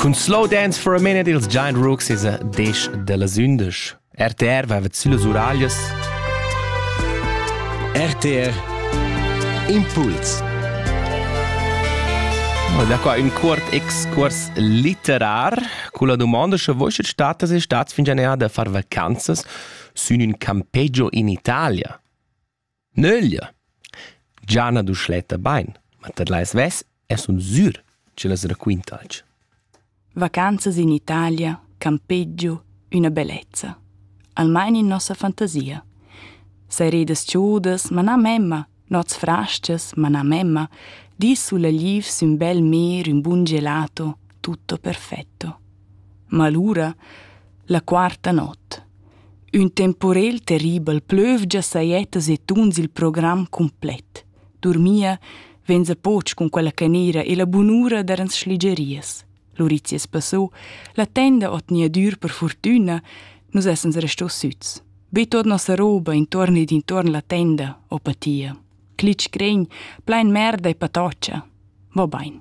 Cun Slow Dance for a Minute ils Giant Rooks es a desch da las undisch. RTR va süllas uraglias. RTR Impuls. Und da qua ün cuort excurs litterar culla domanda sche voi schet statas e stats fingianea da far vacanzas sün ün campeggio in Italia. Nöglia! Gia n'ha Duschletta bain, ma tadlai svess e sun sür ch'ella raquintalch. Vacanzas in Italia, campeggio, üna bellezza. Almain in nossa fantasia. Seredas chaudas, ma na memma, nots frastgas, ma na memma, di sulla liv sün bel mer ün bun gelato, tutto perfetto. Ma lura, la quarta not, Ün temporel terribel plövgia sajettas e tuns il program cumplet. Durmia vainsa poch cun quella canera e la bunura darans schligerias. Lurizias passò, la tenda ot niadur per fortüna, nus essans restò süts. Be tot nossa roba intorn ed intorn la tenda, o patia. Clitsch cregn, plain merda e patoccia. Va bain.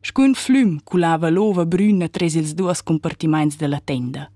Scun flüm culava l'ova brüna tras ils duos compartimaints della tenda.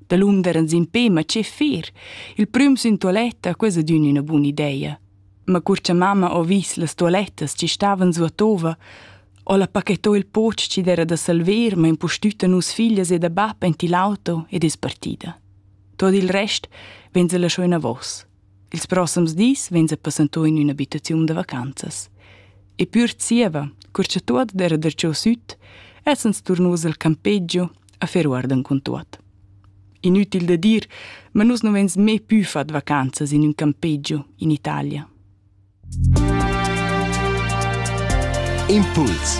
Dalunder ans impè, ma che fer? Il prüm sün tualetta ques ad ün üna buna ideia. Ma cur cha mamma ho vis las tualettas chi stavan su a Tova, ho la pachettò il poch chi d'era da salver, ma impustütta nus figlias e da bap aint ill'auto ed es partida. Tot il rest vegn se lasciò inavos. Ils prossems dis vegns a passentur in ün'abitaziun da vacanzas. E pür zieva, cur cha tuot era darcheu süt, essans turnuos al campeggio a fer uardan cun tuot. Inütil da dir, ma nus nu vegns mê pü fat vacanzas in ün campeggio in Italia. Impuls